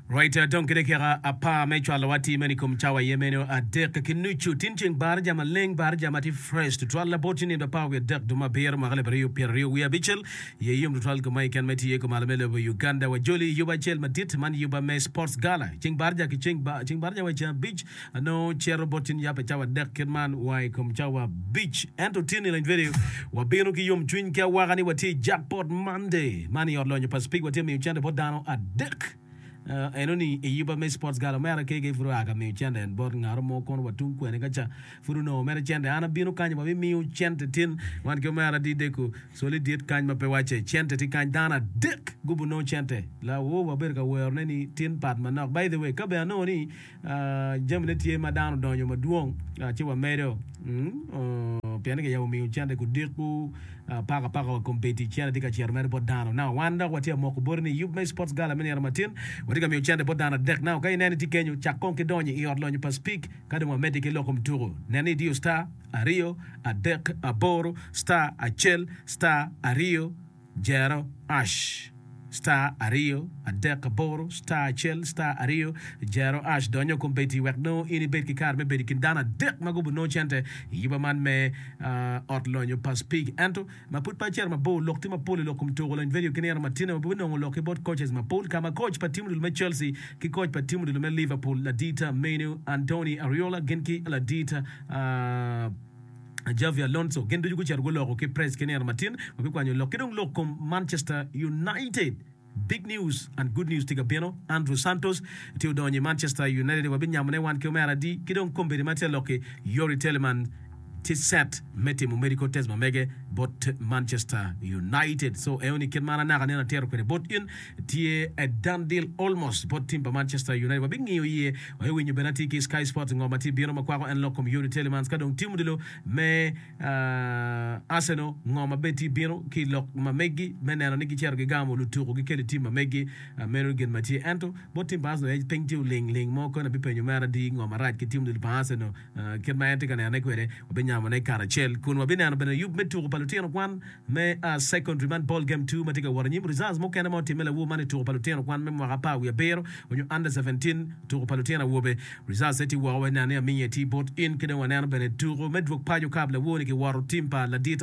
Right, dong ki dakika apar me cwalo wa ti meno i kom cawa aye meno adek ki nucu. Tin ceng barija maleng, barija ma ti fresh tutwal labot ni nindo apar wiye adek duma abiro mwaka alip aryo pyera aryo wiye abicel. Iye yom tutwal koma i ken ma iti iye koma lame lobo Uganda. Wa joli i yuba acel madit, man yuba me Sports Gala. Ceng barija ki ceng, ceng barija wa i ceng abic, Anongo cito bot cin yap i cawa adek kit man wa i kom cawa abic. Ento tyen i leng twedeyo, wabino ki yomcwiny ki awaka ni watye i Jackpot Monday. Man i Ot Lonyo pa Speke watye ka miyo cente bot dano adek. Enoni i yuba me Sports Gala omera kege pud oa ka miyo cente en bot ngaro mo kono wa tung kwene ka ca pud onongo mere cente. An abino kany wa mimiyo cente tin. Wan ki omera di deko coli dit kany ma pe wace cente ti kany dano adek gubu nongo cente. La woo wabedo ka wero ne ni tin pat manok. By the way ka bene anongo ni jamine tye ma dano odonyo madwong ci wamedo pien ni kiyabo miyo cente kudiko paka paka wa kombeddi cente tye ka cito mere bot dano na wan dok watye moko boti ni yub me sports gala me nino matin watye ka miyo cente bot dano adek na ka ineno itye kenyo cak kong ki donyo i ot lonyo pa speak ka dong wamedde ki loko mutuku nen ni idiyo star aryo adek aboro star acel star aryo Jero ash star aryo adek aboro star acel star aryo jero ash donyo kombeddi wek nongo in ibed ki kare me bedo i kin dano adek ma gubo nongo cente i yuba man me ot lonyo pa Spig ento ma pud pe acito mabor lok tye mapol i lok kom tuko lony vedio ki nino ma tino ma pud binongo lok ki bot coaches mapol ka ma coach pa tim odilo me Chelsea ki coach pa tim odilo me Liverpool ladita menu Antony Ariola gin ki ladita Xabi Alonso gin ducu gucito guloko ki press ki nino matin ma bikwanyo lok ki dong lok kom Manchester United. Big news and good news tye ka bino. Andrew Santos tye odonyo i Manchester United wa binyamone wan ki omera adi ki dong kombeddi ma tye lok-ki Youri Tielemans tye set me timo medical test ma mege bot Manchester United. So eo ni kit ma an anaka nino atito kwede bot in tye a done deal almost bot team pa Manchester United wa bingiyo iye Wek iwinyo bene atye ki Sky Sports ngo ma tye bino ma kwako en lok kom Youri Tielemans ka dong tim odilo me Arsenal ngo ma bed tye bino ki lok ma meggi me neno ni gicito gigamo lutuku gikelo i tim ma meggi meno gin ma tye ento bot tim pa Arsenal aye piny tye oling ling mo koni abipenyo mere adi ngo marac ki tim odilo pa Arsenal kit ma en tye ka nenone kwede, wabinyamone karacel kun wabineno bene yub me tuko pa lutino kwan me Secondary man Ball Game Two ma tye ka wot anyim. Results mukene ma otimme lawur man i tuko pa lutino kwan me mwaka apar wiye abiro onyo Under Seventeen tuko pa lutino awobe. Results ne tye woko, waneno ni Aminge tye bot in ki dong waneno bene tuko me dwog paco kap lawur-ni kiwoto tim pa Ladit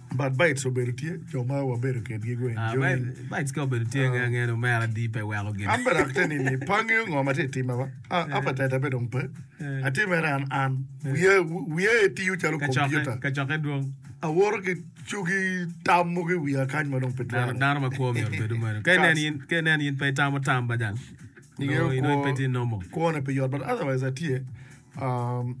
But bites obedo tye jo ma wabedo kedgi go enjoy. Bites ka obedo tye nge nge no mera di pe weko gin. An bene ate nini pa angeyo ngo ma tye timme ba. Appetite abe dong pe. Atye mere an an. Wiya wiya aye tiyo calo computer. Ka coke dwong. Awoto ki cugi tam mogo i wiya kany ma dong pe twero. Dano ma kwo myero bedo meno. Ka inen in ka inen in pe itamo tam bajal. Ingeyo kwo. Pe tye normal. Kwone pe yot but otherwise atye.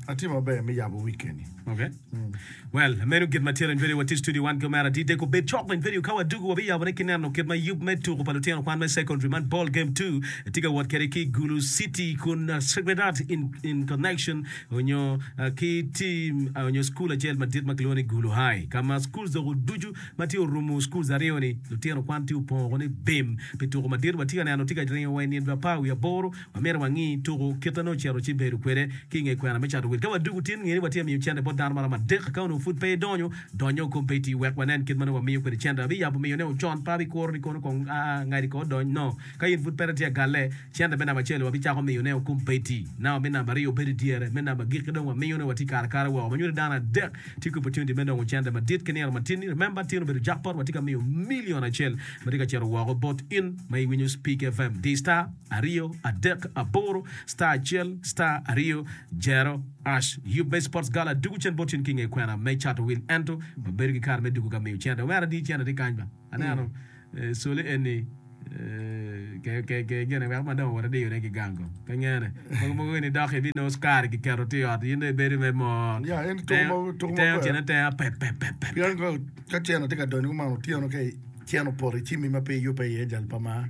Atye maber me yabo wikeni. Okay. Mm. Well, meno git matyero in video wati studio wan ki omera di deko bed cok in video ka wadugu wabi yabo ne ki neno kit ma yub me tuku pa lutino kwan me secondary man ball game 2 tye ka wot kede ki Gulu City kun uh, Sacred Heart in, in connection onyo uh, ki team uh, onyo school acel madit ma kilwongo ni Gulu High ka ma schools dok oducu ma tye orumu schools aryo ni lutino kwan tye opongo ni bim pi tuku madit watye ka neno tye ka ringo wa i nino dwa pa wi aboro Myero wangi tuku kite nongo cito ci bedo kwede ki i nge kwena me cato wil. Ka wadwogo tin, nge ni watye ka miyo cente bot dano maromo adek. Ka onongo pud pe idonyo, donnyo kong pe iti wek wanen kit ma nongo wamiyo kwede cente. Abiyabo miyone o con, pa abikuro ni kono kong a ngadi kor odony no. Ka in pud peri tye ka galle, cente me namba acel-li wabicako miyone o kong pe iti namba me namba aryo obedo i dyere. Me namba agikki dong wamiyone wa tye kare kare woko. Ma nyuto dano adek tye ki opportunity me nongo cente madit ki nino matin-ni. Remember, tin obedo jackpot, watye ka miyo million acel ma tye ka cito woko bot in ma iwinyo Speak FM. D-Star. aryo adek aboro star acel star aryo jero ash yub me sports gala dugu cen bot cen ki nge kwena me cato wil ento ma bedo ki kare me dugu ka miyo cente omera di cente tye kany ba aneno coli eni ke ke gene weko ma dong owoto diyo ne ki gang ko pe ngene mogo mogo gini dok ibi nongo sukari ki keto ti ot yin dong ibedo me mo Ya, en tuko ma- tuko teo maber. cene teo pep pep pep pep Pien ka- ka cene tye ka donyo kuman otyeno ka cen opoto icimi ma pe iyubbe iye jal pa mar.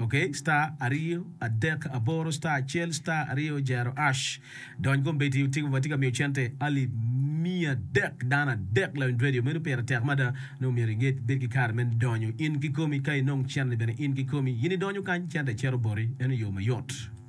Ok star aryo adek aboro star acel star aryo jero ash dony kombeddi otiko watye ka miyo cente alip miya dek dano adek lawiny radio meno pire tek mada nongo myero inget bed ki kare me donyo in kikomi ka inong cente bene in kikomi in idonyo kany cente cito boti meno yo mayot.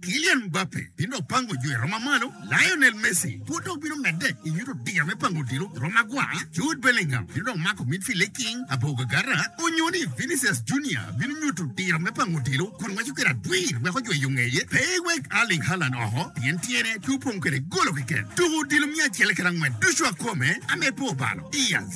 Kylian Mbappe bino dok pango jwero ma malo, Lionel Messi pud dong bino medde i nyuto diya me pango odilo jwero magwar, Jude Bellingham bino dong mako midfield liking labongo agata, onyo ni Vinicius Junior bino nyuto diro me pango odilo kun waco kwede adwir wek ojweyo ngeye pe ewek Erling Haaland oko pien tyene pe opong kwede golo keken. Tuko odilo miya acel kede angwen ducu akome, ame pe obalo. Diaz.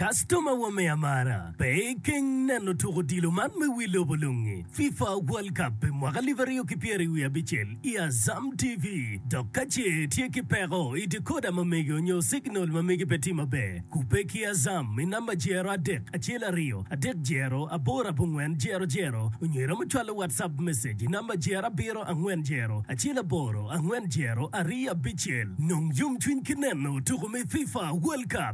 Kastoma wa me amara, pe ikeng neno tuk odilo man me wi lobo lungi, FIFA World Cup pi mwaka alip aryo ki pyeri wiye abicel i Azam TV. Dok ka ce itye ki peko i decoder ma megi onyo signal ma megi pe tye maber, kubbe ki Azam i namba jero adek acel aryo adek jero aboro abongwen jero jero onyo iromo cwalo WhatsApp message i namba jero abiro angwen jero acel aboro angwen jero aryo abicel. Nong yomcwiny ki neno tuku me FIFA World Cup.